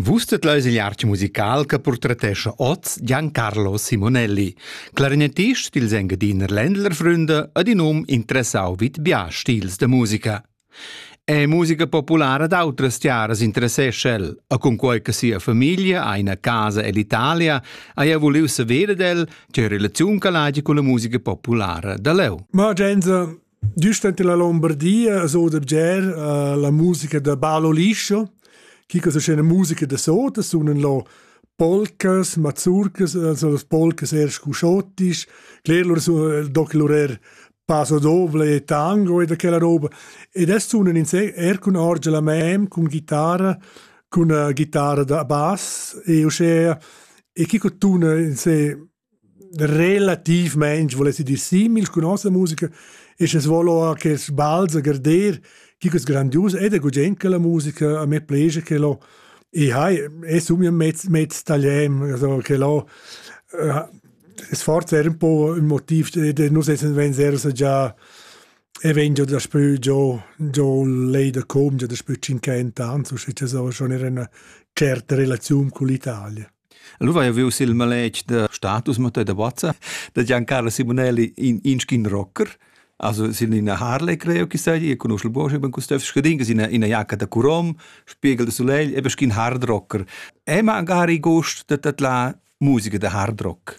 Vus tet leis igl artg musical che portretescha oz Giancarlo Simonelli, clarinetist dils Engadiner Ländlerfründe ad in um interessau vid bia stils de musica. È musica populara d'autras tiaras interessescha el, a cunquei che sia famiglia ha ina casa ell'Italia, haja vuliu saver ed el che relaziun che l'hagi con la musica populara da leu. Ma Genso, Giust ante la Lombardia a so da bger uh, la musica da Balo Liscio, chi che scena musica da sota, sunan lo polcas, mazurcas, also las polcas er scuscottis, cler lur su doc lur er paso doble e tango e da quella roba. Ed es sunan in se er cun orgia la mem, cun chitarra, cun uh, chitarra da bass e uscea e chi cotuna in se Relatiivmaing vuless i dir simil cun nossa musica e sche svoul our quels bals a garder, chi ch'es grandius ed è gugent quella musica, a me plegia quel ho e hai e sun eir mez mez tagliem, also quel ho es forsa eir ün po ün motiv ed nus essan vegns eir già e vegn giò daspö giò giò lei da com, già daspö tschinchent ans, usche cha so, schon eir üna tscherta relaziun cun l'Italia. Lu vai viu sil maletg da status Mattei da Bozza da Giancarlo Simonelli in inschin rocker. Also sin ina Harley creo chi sai, io conosco il Bosch, ben custef scadin che ina ina jacca da Curom, spiegel de Soleil, e beschin hard rocker. E magari gost da tat la musica da hard rock.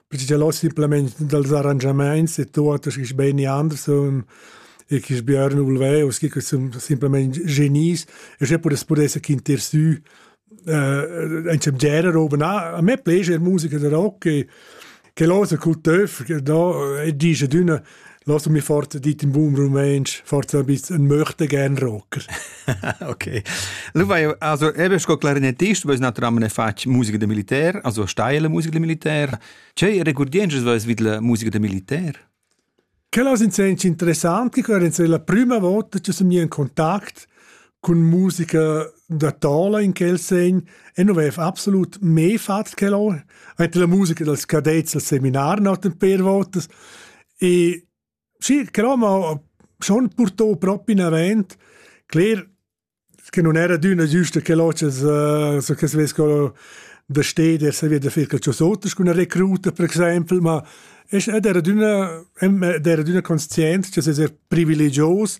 Pigialo simplamain dals arrangiamaints e tuot schi beni anders sun e chi sbüarn vulveus, chi sun simplamaing genies e sche pudess pudess esser quintersü eh in genere roba na. A me plescha musica da rock e che l'ho sa cul töf, da e disch ad üna lass mich fort dit im Boom Rumänsch, fort so ein bisschen ein möchte gern Rocker. okay. Lu vai also eben sco clarinetist, weil naturalmente ne fatg musica de militär, also steile musica de militär. C'è recurdiences vas vid la musica de militär? Quella è interessante, che è la prima volta che sono in contatto cun musica da tola in quel segn e non vev absolut me fatg quel or ante la musica dels cadets al seminar noten per votas e sì però ma schon portò proprio in avant cler che non era d'una giusta che l'oces uh, so che se vesco da steder se via da fer quel ciosotas con una recruta per exempel ma ed era d'una ed era d'una conscient che se privilegios